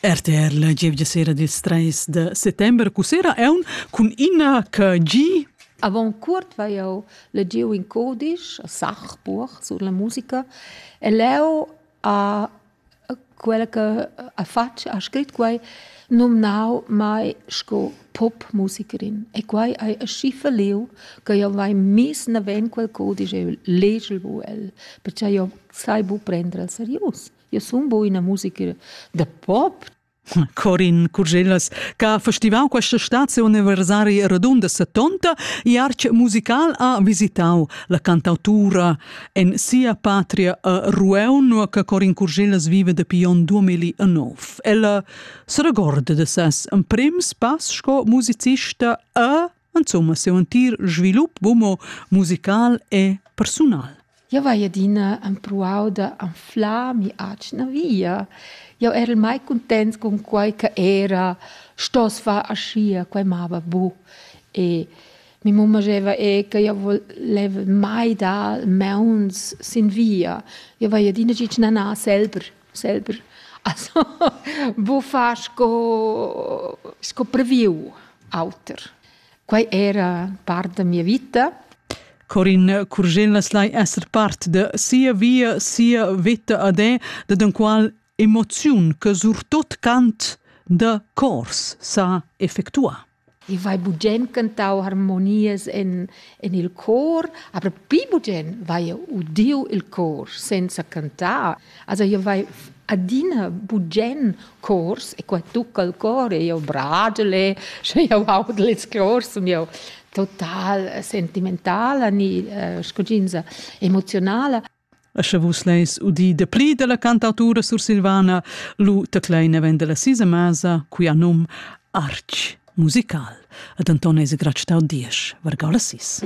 RTR la gievgia sera dils treis de settember cussera eun cun ina KG Avant cuort vai jau legiu in codisch a Sachbuch sur la musica e leu a quella che ha fatg ha scrit quai nomnau mai sco popmusikerin e quai hai schiffa liu che jau vai mis naven quel codisch e legel bu el perché jau sai bu prender el serius. Eu sun bu üna musica da pop. Corin Curgellas, ch'ha festivau questa stazione universari radunda 70 e arch musical ha visitau la cantautura en sia patria a Rueun, che Corin Curgellas vive dapi on 2009. Ella se regorda de ses prims pass sco musicista a insomma seu entir svilup homo musical e persunal. Eu vai adina empruau da anflar mi atschna via. Eu ero mai contents con quai che era stos far aschia, quai mava bu. E mi mamma diceva e che io voleva mai dar meuns sin via. Io vai adina gitsch nana selber. selber also buffar sco sco previu auter. Quai era part da mia vita. Corin Curgel las lai esser part de sia via, sia vita ad è, de den qual emoziun che surtot cant de cors sa effectua. I vai bugen cantau harmonias en en il cor, aber pli bugen vai udiu il cor senza cantar. Also io vai adina bugen cors e qua tucca il cor e io bragel e sche io audel ils cors sun io total sentimentala ni uh, scuginza emoziunala. E sche vus leis udir dapli dalla cantautura sursilvana, lu tecleina vend dalla sisa masa, quia num Arch musical. Ed Anton es gratsch tau diesch, vargau la sis.